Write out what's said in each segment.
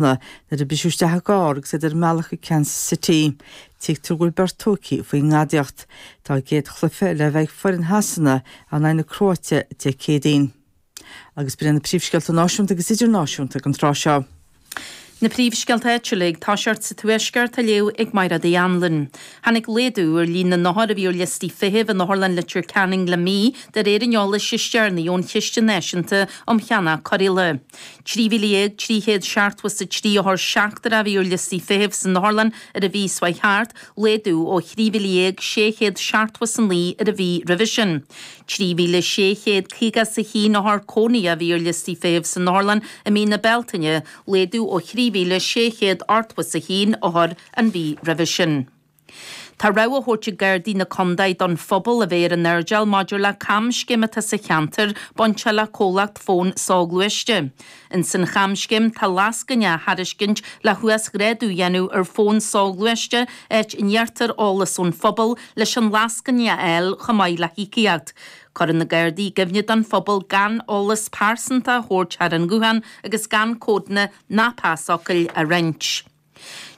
Samhna nuair a briseadh isteach i gcarr agus iad ar an mbealach go Kansas City. Tuigtear go bhfuil beirt tógtha faoin ngadaíocht. Tá a gcéad chluiche le bheith ag foireann Shasana in aghaidh na Cróite Dé Céadaoin. Agus b'in iad na príomhscéalta náisiúnta agus idirnáisiúnta don tráth seo. Na príomhscéalta áitiúla ag toiseacht sa Tuaisceart á léamh ag Máire Uí Anluain. Tháinig laghdú ar líon na n-othar a bhí ar liostaí feithimh in Otharlann Leitir Ceanainn le mí, de réir an eolais is deireanaí ón Chiste Náisiúnta um Cheannach Cóireála. 13,373 othar seachtrach a bhí ar liostaí feithimh san Otharlann ar an mhí seo chuaigh thart, laghdú ó 13,679 ar an mhí roimhe sin. 3,651 othar cónaithe a bhí ar liostaí feithimh san Otharlann i mí na Bealtaine, laghdú ó 3,681 othar an mhí roimhe sin. Tá rabhadh á thabhairt ag Gardaí na Condae don phobal a bheith ar an airdeal maidir le camscéim atá sa cheantar bainte le comhlacht fóin soghluaiste. Ins an chamscéim tá lascaine á thairiscint le huasghrádú a dhéanamh ar fón soghluaiste áit a n-iarrtar eolas ón phobal leis an lascaine a fháil chomh maith le híocaíocht. Cuireann na Gardaí i gcuimhne don phobal gan eolas pearsanta a thabhairt thar an nguthán agus gan códanna ná pasfhocail a roinnt.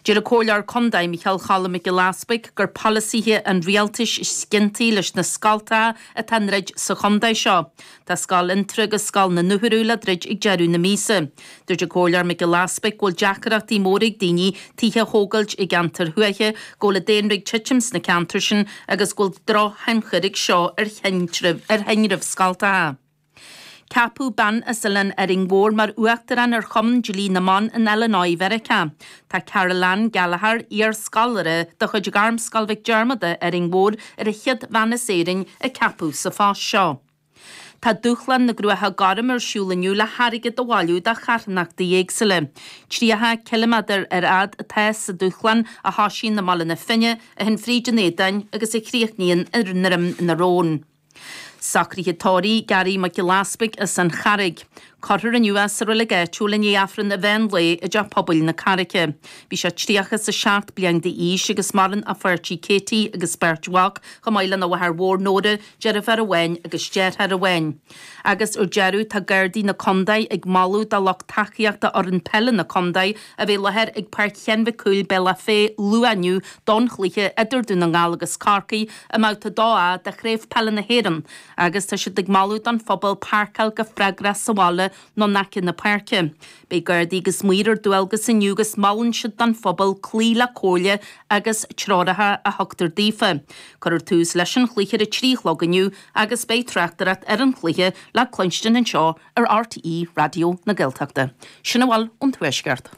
Deir an Comhairleoir Condae Micheál Choilm Mac Giolla Easbuig gur polasaithe an Rialtais is ciontaí leis na scoltacha atá á ndruid sa chondae seo. Tá Scoil Fhionntrá agus Scoil na nDúchoradh le druid ag deireadh na míosa. Dúirt an Comhairleoir Mac Giolla Easbuig go bhfuil deacaireachtaí móra ag daoine tithe a thógailt i gceantair thuaithe, go bhfuil an daonra ag titim sna ceantair sin agus go bhfuil drochthionchar ag seo ar thinreamh scoltacha. Ceapadh bean as Oileán Árainn Mhór mar uachtarán ar Chumann Dlí na mBan in Illinois Mheiriceá. Tá Caroleann Gallagher, iar-scoláire de chuid Ghairmscoil Mhic Diarmada, Árainn Mhór, ar an chéad bhean as Éirinn a ceapadh sa phost seo. Tá Dúshlán na gCruacha Gorm ar siúl inniu le hairgead a bhailiú do charthanachtaí éagsúla. 30 ciliméadar ar fhad atá sa Dúshlán, a thosaíonn i mBaile na Finne, a théann fríd an Éadan agus a chríochnaíonn i nDroim na Rón. Socruithe Tórraimh, Garry Mac Giolla Easpaig as an Charraig. Cuirfear inniu é sa reilig áitiúil i ndiaidh Aifreann an mheán lae i dTeach Pobail na Carraice. Bhí sé tríocha is a seacht bliain d'aois agus maireann a pháirtí Katie agus beirt mhac, chomh maith lena mháthair mhór Nóra, deirfiúr amháin agus deartháir amháin. Agus ar deireadh tá Gardaí na Condae ag moladh do lucht tacaíochta fhoireann peile na Condae a bheith i láthair ag Páirc Sheáin Mhic Cumhaill, Bealach Féich, luath inniu don chluiche idir Dún na nGall agus Corcaigh, i mBabhta 2A de Chraobh Peile na hÉireann agus tá siad ag moladh don phobal páirceáil go freagrach sa bhaile nó in aice na páirce. Beidh Gardaí agus Maoir ar dualgas inniu agus molann siad don phobal cloí le comhairle agus treoracha a thugtar daofa. Cuirfear tús leis an chluiche ar a trí a chlog inniu agus beidh tráchtaireacht ar an chluiche le cluinstin anseo ar RTÉ Raidió na Gaeltachta. Sin a bhfuil ón Tuaisceart.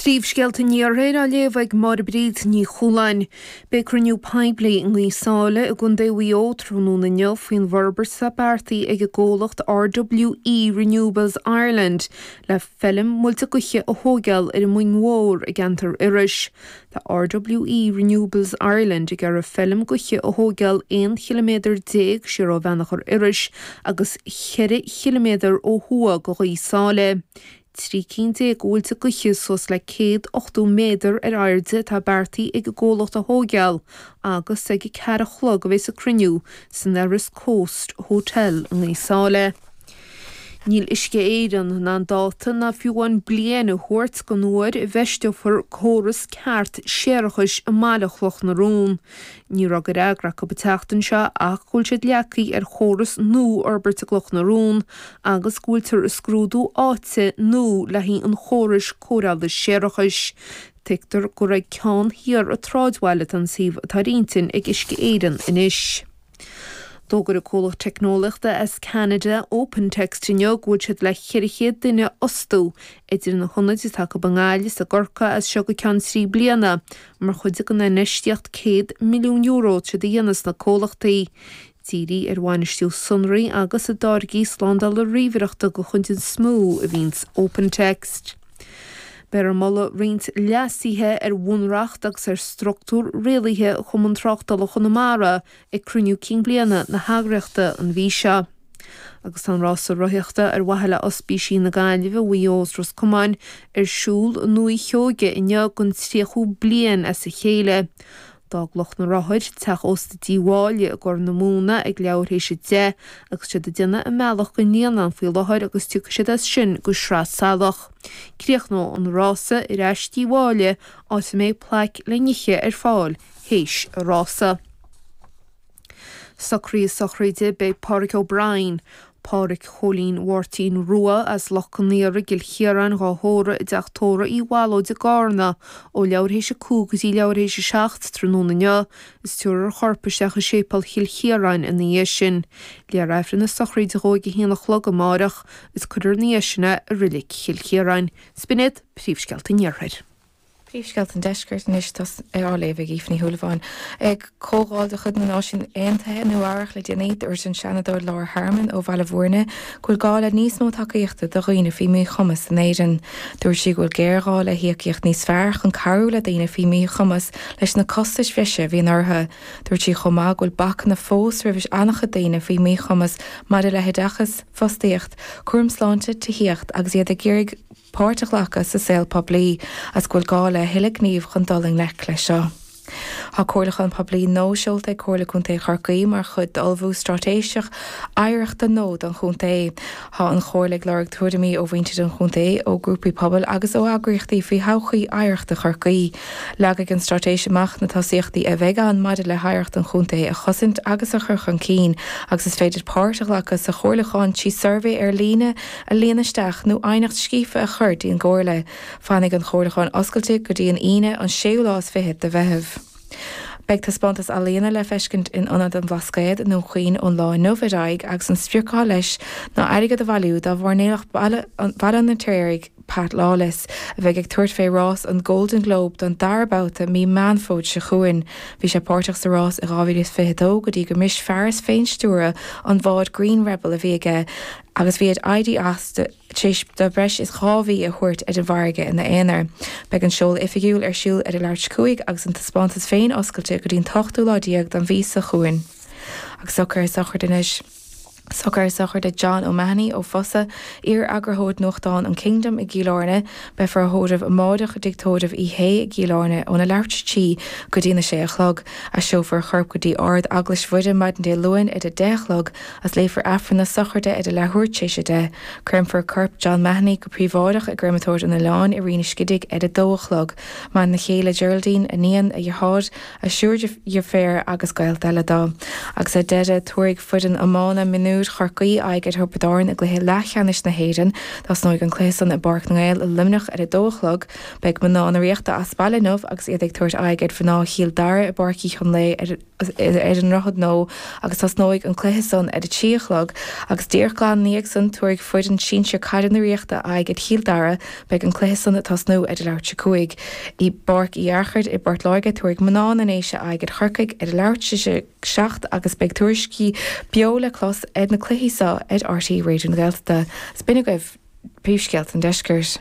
Príomhscéalta an Iarthair á léamh ag Máire Bríd Ní Chualáin. Beidh cruinniú poiblí i nGaoth Sáile i gContae Mhaigh Eo tráthnóna inniu faoin bhforbairt atá beartaithe ag an gcomhlacht RWE Renewables Ireland le feilm muilte gaoithe a thóigeáil ar an Muing Mhór i gceantar Iorrais. Tá RWE Renewables Ireland ag iarraidh feilm gaoithe a thóigeáil 11 chiliméadar siar ó Bheannchor Iorrais agus 4 chiliméadar ó thuaidh de Ghaoth Sáile. Trí cinn déag de mhuilte gaoithe suas le céad ochtó méadar ar airde atá beartaithe ag an gcomhlacht a thóigeáil agus ag a ceathair a chlog a bheas an cruinniú san Erris Coast Hotel i nGaoth Sáile. Níl Uisce Éireann in ann dáta ná fiú amháin bliain a thabhairt don uair a bhfeisteofar córas ceart séarachais i mBaile Chloch na Rón. Ní raibh de fhreagra acu an tseachtain seo ach go bhfuil siad leagtha ar chóras nua a fhorbairt i gCloch na Rún agus go bhfuiltear ag scrúdú áite nua le haghaidh an chórais cóireála séarachais. Tuigtear gur ag ceann thiar an tsráidbhaile atá an suíomh atá ar intinn ag Uisce Éireann anois. D'fhógair an comhlacht teicneolaíochta as Ceanada, OpenText, inniu go bhfuil siad le 400 duine a fhostú idir na hionaid atá acu i nGaillimh is i gCorcaigh as seo go ceann trí bliana. Mar chuid den infheistíocht €100 milliún atá siad a dhéanamh sna comhlachtaí, ag díriú ar bhainistiú sonraí agus ar tháirgí slándála ríomhaireachta go coiteann is mó a bhíonns OpenText. Beifear ag moladh roinnt leasuithe ar bhunreacht agus ar structúr rialaithe Chumann Tráchtála Chonamara ag cruinniú cinn bliana na heagraíochta an mhí seo agus tá an rása rothaíochta ar mhaithe le Ospísí na Gaillimhe, Mhaigh Eo is Ros Comáin ar siúl i nDúiche Sheoigheach inniu don 30ú bliain as a chéile. D'fhág lucht na rothar Teach Ósta Tí Mháille i gCorr na Móna ag leathuair théis a deich agus tá siad ag déanamh a mbealach go dtí an Líonán faoi láthair agus tiocfaidh siad as sin go Sraith Salach. Críochnóidh an rása ar ais Tí Mháille áit a mbeidh plaic le n-ithe ar fáil théis an rása. Socruithe sochraide beidh Pádraig O'Brien, Pádhraic Chóilín Mháirtín Rua, as Loch Con Aoire i gCill Chiaráin dhá thórramh i dteach tórraimh Uí Mhaoilchiaráin i gCárna, ó leathuair théis a cúig go dtí leathuair théis a seacht tráthnóna inniu, is tabharfar a chorp isteach i Séipéal Chill Chiaráin ina dhiaidh sin. Léifear Aifreann na sochraide dhó ag a haon a chlog amáireach, is cuirfear ina dhiaidh sin é i Reilig Chill Chiaráin. Sin iad Príomhscéalta an Iarthair. Príomhscéalta an Deiscirt anois á léamh ag Aoife Ní Shúilleabháin. Ag comhdháil de chuid na Náisiún Aontaithe i Nua-Eabhrach le déanaí, dúirt an Seanadóir Laura Harmon ó Bhaile Bhúirne go bhfuil gá le níos mó tacaíochta do dhaoine faoi mhíchumas in Éirinn. Dúirt sí go bhfuil géarghá le híocaíocht níos fearr chun cabhrú le daoine faoi mhíchumas leis na costais bhreise a bhíonn orthu. Dúirt sí chomh maith go bhfuil bacanna fós roimh an-chuid daoine faoi mhíchumas maidir le hoideachas, fostaíocht, cúram sláinte, tithíocht agus iad ag iarraidh páirt a ghlacadh sa saol poiblí agus go bhfuil gá le a thuilleadh gnímh chun dul i ngleic leis seo. Tá comhairliúchán poiblí nua seolta ag Comhairle Contae Chorcaí mar chuid d'ullmhú straitéiseach oidhreachta nua don chontae. Tá an Chomhairle ag lorg tuairimí ó mhuintir an chontae, ó ghrúpaí pobail agus ó eagraíochtaí faoi thodhchaí oidhreachta Chorcaí. Leagfaidh an straitéis amach na tosaíochtaí a bheidh ann maidir le hoidhreacht an chontae a chosaint agus a chur chun cinn agus is féidir páirt a ghlacadh sa chomhairliúchán trí suirbhé ar líne a líonadh isteach nó aighneacht scríofa a chur dtí'n gComhairle. Fanfaidh an chomhairliúcháin oscailte go dtí an Aoine an séú lá is fiche de Mheitheamh. Beidh taispeántas ealaíona le feiscint in Ionad an Bhlascaoid i nDún Chaoin ón lá inniu ar aghaidh agus an sprioc atá leis ná airgead a bhailiú do mhairnéalach Bhaile an Fheirtéaraigh Pat Lawless a bheidh ag tabhairt fé rás an Golden Globe don dara babhta mí Meán Fómhair seo chugainn. Bhí sé páirteach sa rás i 2022 go dtí gur bhris fearas féinstiúrtha an bháid Green Rebel a bhí aige agus bhí air éirí as tar éis dó breis is dhá mhí a thabhairt ar an bhfarraige ina aonar. Beidh an seoladh oifigiúil ar siúl ar a leathuair tar éis a 5 agus an taispeántas féin oscailte go dtí an t-ochtú lá déag don mhí seo chugainn. Agus socrú sochraide anois. Socrú sochraide John O'Mahony ó Fosadh, iar-eagarthóir nuachtáin an Kingdom i gCill Áirne. Beifear á thórramh amáireach i dTigh Tórraimh Uí Shé i gCill Áirne óna leathuair tar éis a trí go dtína sé a chlog. Aistreofar a chorp go dtí Ardeaglais Mhuire maidin Dé Luain ar a deich a chlog Is léifear Aifreann na sochraide ar a leathuair tar éis a deich. Creimfear corp John Mahony go príobháideach i gCreimeatóir an Oileáin i Rinn an Scidígh ar a dó a chlog. Maireann a chéile Geraldine, a iníon, a dheartháir, a thriúr deirféar agus gaolta eile dó. Agus ar deireadh tabharfaidh foireann iomána mionúir Chorcaí aghaidh ar Thiobraid Árann i gcluiche leathcheannais na hÉireann. Tosnóidh an cluiche san i bPáirc na nGael i Luimneach ar a dó a chlog. Beidh mná na Ríochta as baile inniu agus iad ag tabhairt aghaidh ar mhná Chill Dara i bPáirc Uí Chonlaoidh ar ar an nDroichead Nua agus tosnóidh an cluiche san ar a trí a chlog agus díreach glan ina dhiaidh san tabharfaidh foireann sinsir caide na Ríochta aghaidh ar Chill Dara beidh an cluiche san ag tosnú ar a leathuair tar éis a 5 i bPáirc Uí Fhearchair i bPort Láirge tabharfaidh Mná na nDéise aghaidh ar Chorcaigh ar a leathuair tar éis a 7 agus beidh tuairiscí beo le clos ar na cluichí seo ar RTÉ Raidió na Gaeltachta. Is b'in é agaibh. Príomhscéalta an Deiscirt.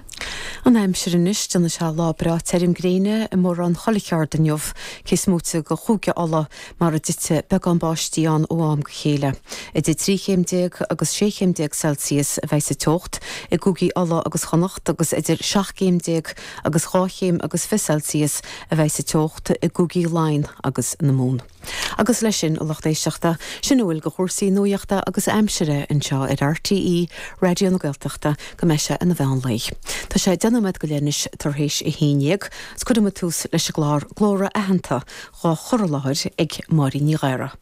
An aimsir anois déanfaidh sé lá breá tirim gréine i mórán chuile cheard inniu, cé is móite de Chúige Uladh, mar a dtitfidh beagán báistí ann ó am go chéile. Idir trí chéim déag agus sé chéim déag Celsius a bheidh sa teocht i gCúigí Uladh agus Chonnacht agus idir seacht gcéim déag agus dhá chéim agus fiche Celsius a bheidh sa teocht i gCúigí Laighean agus na Mumhan. Agus leis sin, a lucht éisteachta, sin a bhfuil de chúrsaí nuachta agus aimsire anseo ar RTÉ Raidió na Gaeltachta go mbeidh sé ina mheán lae. Tá sé deich nóiméad go leith anois tar éis a haon dhéag, agus cuirfidh muid tús leis an gclár Glór-aitheanta, dhá chur i láthair ag Máirín Ní Ghadhra.